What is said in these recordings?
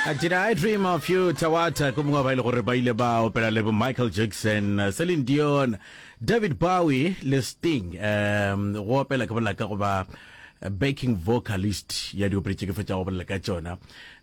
Uh, Did I Dream of You Tawata ke mongwe ba ile gore ba ile ba opela le bo Michael Jackson, uh, Celine Dion, David Bowie le Sting um go opela ke bolela ka go ba uh, backing vocalist ya diopedi tše ke fetša go bolela ka tšona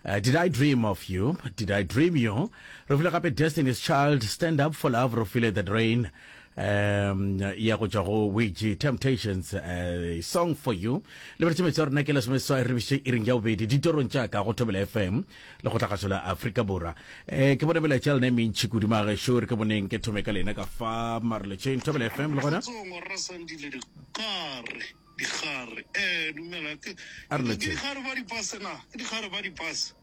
uh, Did I Dream of You Did I Dream You re file gape Destiny's Child Stand Up for Love re file The Drain um ya go tšwa go wege temptations uh, song for you lebeletše metsi ya rona ke lesome seswai re biše iring ya bobedi ditorong tša ka go thobela fm le go tlhagaso la aforika borwa um ke bone melaetša lena e mentšhi kudu magešo re ke boneng ke thome ka lena ka fa mareletšeng thobela fm le gona digare eh dumela ke digare ba dipase na ke digare ba dipase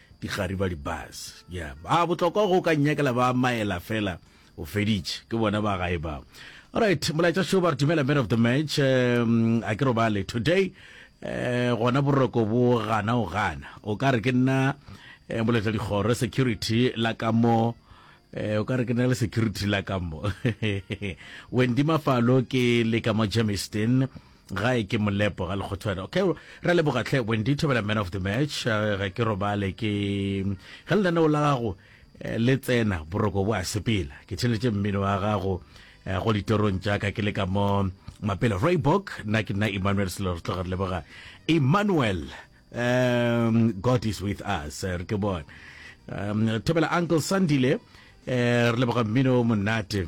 Dikgari ba di bus. Ya ba botlokwa go ka nyakela ba maela fela o feditše ke bona ba gae ba. Alright, molaetša show ba re dumela man of the match um, a ke robale today eh gona boroko bo gana o gana o ka re ke nna eh, moletla dikgoro security la ka mo eh o ka re ke nna le security la ka mo Wendy Mafalo ke le ka mo Germiston gae ke molepo ga lekgothwane okay ra leboga tlhe wendy thobela man of the match eh, ga ke robale ke ge lenaneo la gago eh, le tsena boroko bo a sepela ke tšheletše mmino wa gago eh, go ditorong tša ka ke le ka mo mapele roybok nna ke nna emmanuel selo re tloga re leboga emmanuel um, god is with us re ke bone um, thobela uncle sandile um, re leboga mmino monate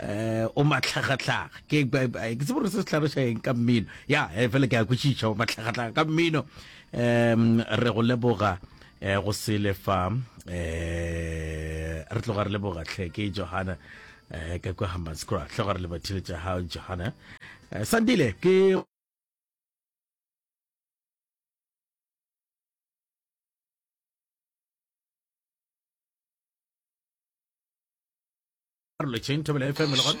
Eh, o matlhagatlhaga ke ke tsebe gore se se tlhaloša eng ka mmino ya eh, fela ke a kwešiša o matlhagatlhaga ka mmino um re go leboga um go sele fa um re tloga re leboga tlhe ke johana um ka kwa hambanscra tloga re lebathile tša gago johana um sandile ke Arlo Chain Thobela FM le gona